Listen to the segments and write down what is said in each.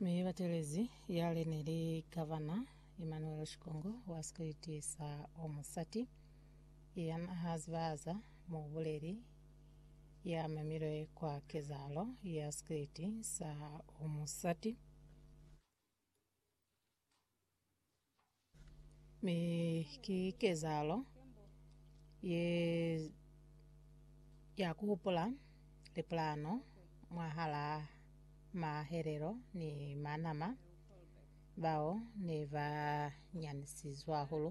Mi batelezi yale neli Gavana Emmanuel Shikongo wa sikwiti sa Omusati yanahazibaza mubuleli yamemilwe kwa kezahalo ya sikwiti sa Omusati. Mi ki kezahalo ye ya ku hupula lipulano mwahal'a mahelelo ni manama bao ne ba nyanisizwe hahulu.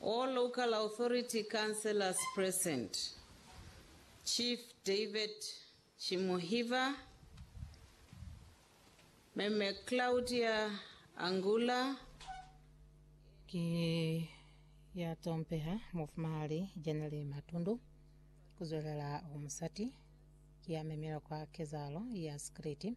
All local authority councillors present, Chief David Chimuhiva, Mme Claudia Angula, Ki ya tompeha, Mufumahali Janelle Matundu, kuzwelela umusati, ki ya memilwe kwa kezahalo ya sikiliti.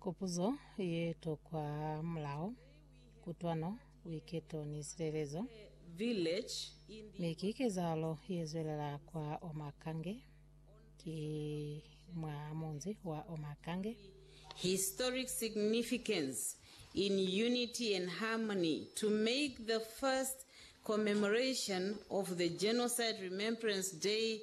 Kopuzo ye tokwa hamulaho, kutwano, buiketo ni silelezo. Mi ki kezahalo ye zwelela kwa Omakange, ki mwa munzi wa Omakange. Historic significance in unity and harmony to make the first commemoration of the Genocide Remembrance Day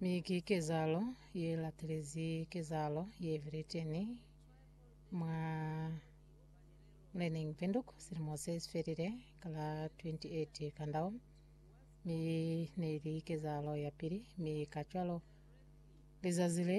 Mi ki kezahalo ye latelezi kezahalo ye Britain mwa Learning Windhoek silimo se si felile ka la 28 Kandao, mi ne li kezahalo ya pili, mi kacwalo lizazi le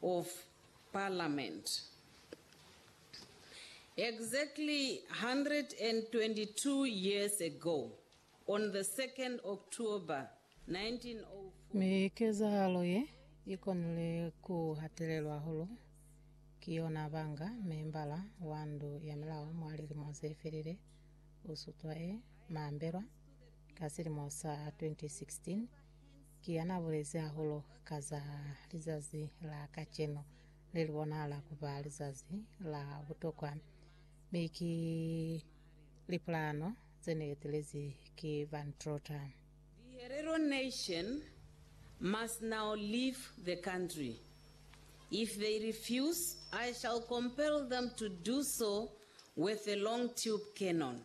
of Parliament. Exactly 122 years ago, on the 2nd October 1904, Mi kezahalo ye i konile ku hatelelwa hahulu ki yona banga membala wa ndu ya milao mwa lilimo ze felile u sutwa e mambelwa ka silimo sa 2016. Ki yana bulezi hahulu ka za lizazi la kacenu, le li bonahala ku ba lizazi la butokwa, mi ki lipulano ze ne etelezi ki Van Trotter. The Herero nation must now leave the country. If they refuse, I shall compel them to do so with a long tube cannon.